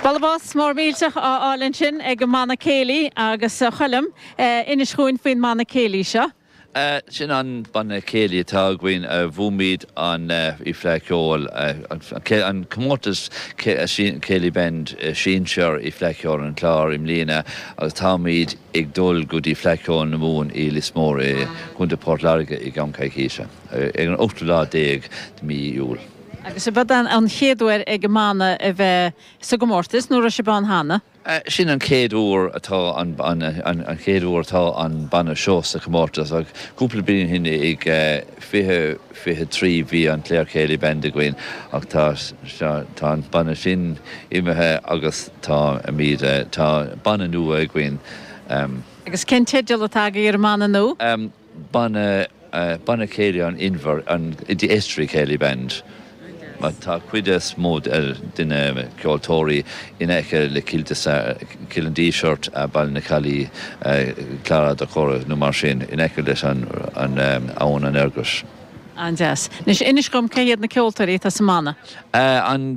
Bualadh bos mór millteach á fháil ansin ag an mbanna céilí agus a Choilm, inis dhúinn faoin mbanna céilí seo. Sin an banna céilí atá againn, bhuaimid an Fleadh Cheoil, an comórtas céilí band sinsear i Fleadh Cheoil an Chláir i mbliana agus táimid ag dul go dtí Fleadh Cheoil na Mumhan i Lios Mór i gContae Port Láirge i gceann coicíse. ar an ochtú lá déag de mhí Iúil. Agus ab é an chéad uair ag an mbanna a bheith sa gcomórtas, nó an raibh sibh ann cheana? Sin an chéad uair atá an chéad uair atá an banna seo sa chomórtas ach cúpla bliain ó shin ag fiche fiche trí bhí an Clare Céilí Band againn ach tá tá an banna sin imithe agus táimid tá banna nua againn. Agus cén teideal atá agaibh ar an mbanna nua? Ban Banna Céilí an Inbhir, an The Estuary Céilí Band, mar tá cuid is mó de na ceoltóirí in aice le Cill Cill an Dísirt, Baile na Caillí, Clár Átha Dá Chora nó mar sin, in aice leis an abhainn an Fhergus. An-deas. Anois inis dhom cé hiad na ceoltóirí atá sa mbanna. An.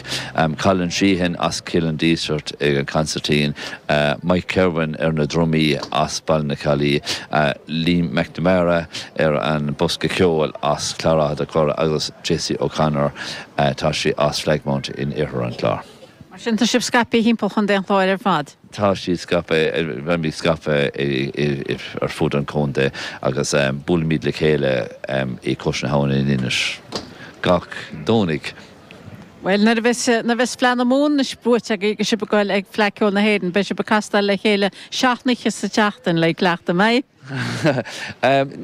Colin Sheehan as Cill an Dísirt ag an gcansairtín, Mike Kirwan ar na drumaí as Baile na Caillí, Liam McNamara ar an bhosca ceoil as Clár Átha Dá Chora agus Jessie O'Connor, tá sí as Flagmount in oirthear an Chláir. Mar sin tá siad scaipthe thimpeall chontae an Chláir ar fad? Tá siad scaipthe, bheimid scaipthe ar fud an chontae agus buailimid le chéile i gCois na hAbhann in Inis gach Domhnaigh. Bhuel, nuair a bheas, nuair a bheas Fleadh na Mumhan anois buaite agaibh agus sibh ag gol ag Fleadh Cheoil na hÉireann, beidh sibh ag castáil le chéile seacht n-oíche sa tseachtain, le cleachtadh, an mbeidh?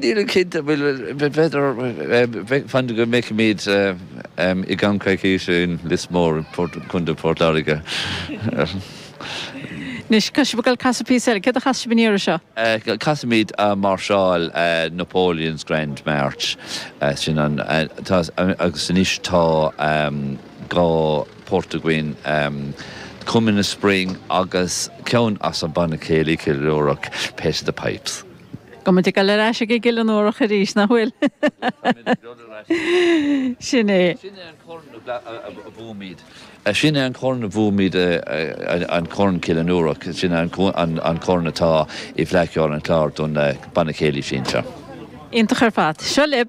Nílim cinnte, bhuel, b'fhéidir, fan go bhfeicfimid i gceann coicíse in Lios Mór, Contae Phort Láirge. Anois, tá sibh ag gol ag casadh píosa eile. Céard a chasfas sibh an iarraidh seo? Casfaimid Máirseáil Napoleon's Grand March, sin an, tá, agus anois tá dhá port againn, Coming of Spring agus ceann as an Banna Céilí Chill Fhionnúrach, Pet of the Pipes. Tá muid ag dul ar ais ag an gCill Fhionnúrach arís, nach bhfuil? Sin é Sin é an corn a bhuaimid, an corn Cill Fhionnúrach, sin é an corn atá i bhFleadh Cheoil an Chláir don Bhanna Céilí Sinsear. Iontach ar fad. Seo libh.